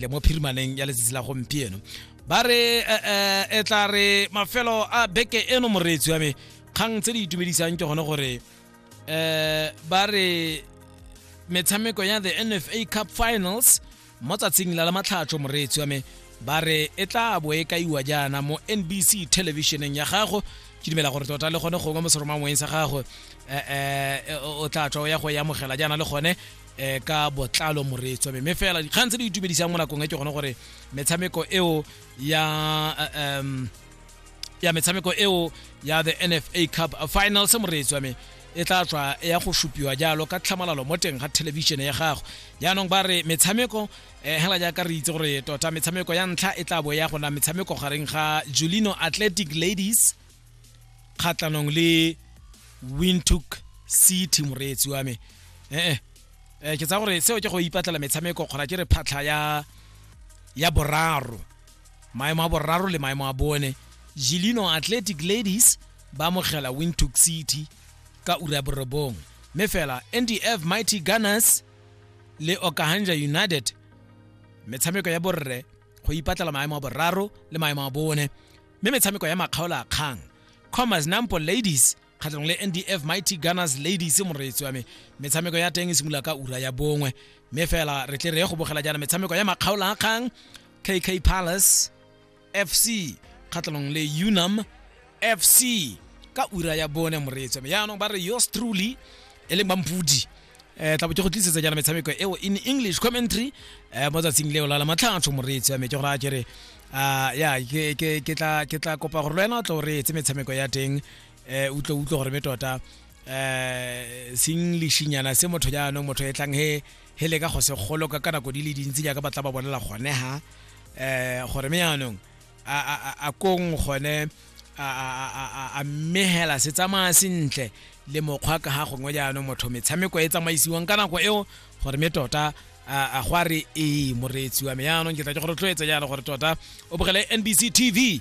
le mo phirimaneng ya letsatsi la gompieno ba re eh, eh, e tla re mafelo a beke eno moreetsi wa me kgang tse di itumedisang ke gone gore um ba re metshameko ya the nfa cup finals mo tsatsing la la matlhatsho moreetsi wa me ba re e tla bo e kaiwa jaana mo nbc televisioneng ya gago ke dumela gore tota le gone gongwe mo seromangweng sa gago um o tla tswa o ya go e amogela jaana le gone um ka botlalo moreetswa mme fela dikgang tse di itumedisang mo nakong e ke gone gore metshameko eo ya um ya metshameko eo ya the nfa cup finals moreetswa me e tla tswa ya go supiwa jalo ka tlhamalalo mo teng ga thelebišene ya gago jaanong ba re metshameko um hela jaaka re itse gore tota metshameko ya ntlha e tla bo ya gona metshameko gareng ga julino athletic ladies kgatlhanong le wintook city moreetsi wa me ee eh, ke tsa gore seo ke go ipatlela metshameko kgona ke re phatlha ya ya boraro maemo a boraro le maemo a bone gilino athletic ladies ba amogela wintook city ka ura ya borobong mme fela ndf mighty gunners le okahanja united metshameko ya borre go ipatlela maemo a boraro le maemo a bone mme metshameko ya makgaolo a kgang commerce nampo ladies kgatlhanong le ndf mighty gunners ladies moreetsi wa me metshameko ya teng e simolola ka ura ya bongwe mme fela re tle re ye go bogela jaana metshameko ya makgaolo a kgang kk palace fc kgatlhanong le unam fc ka ura ya bone moreetsi wa me yaanong ba re yours truly e leng bampodi eh tla botse go tlisetsa jana metshameko eo in english commentary eh mo tsatsing leo la la matlhatsho moreetsi wa me ke gore a kere ah ya ke ke ke tla ke tla kopa gore lwena o tlo re etse metshameko ya teng eh utlo utlo gore me tota eh singlishinyana se motho ya no motho e tlang he he le ka go se golo ka kana go di le dintsi ja ka batla ba bonela gone ha eh gore me yanong a kong gone a mmegela se tsamaya sentle le mokgwa ka ga gongwe jaanong motho metshameko e tsamaisiwang ka nako eo gore me tota a go a re ee moreetsi wa me jaanong ke tla ke go rotloetsa jalo gore tota o bogele nbc tv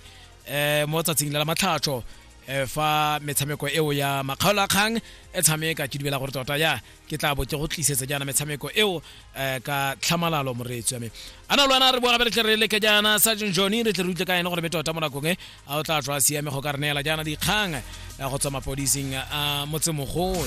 um mo tsatsing la la matlhatsho um fa metshameko eo ya makgaolo a kgang e tshameka ke dumela gore tota ya ke tla bo ke go tlisetsa jaana metshameko eo eh, ka tlhamalalo moreetsi wa me a na lwana re boa gape re tle re leke jaana sergeant johnny re tle re utlwe ka ene gore me tota mo nakong e a o tla tswa siame go ka re neela jaana dikgang eh, go tswa mapodising a motsemogolo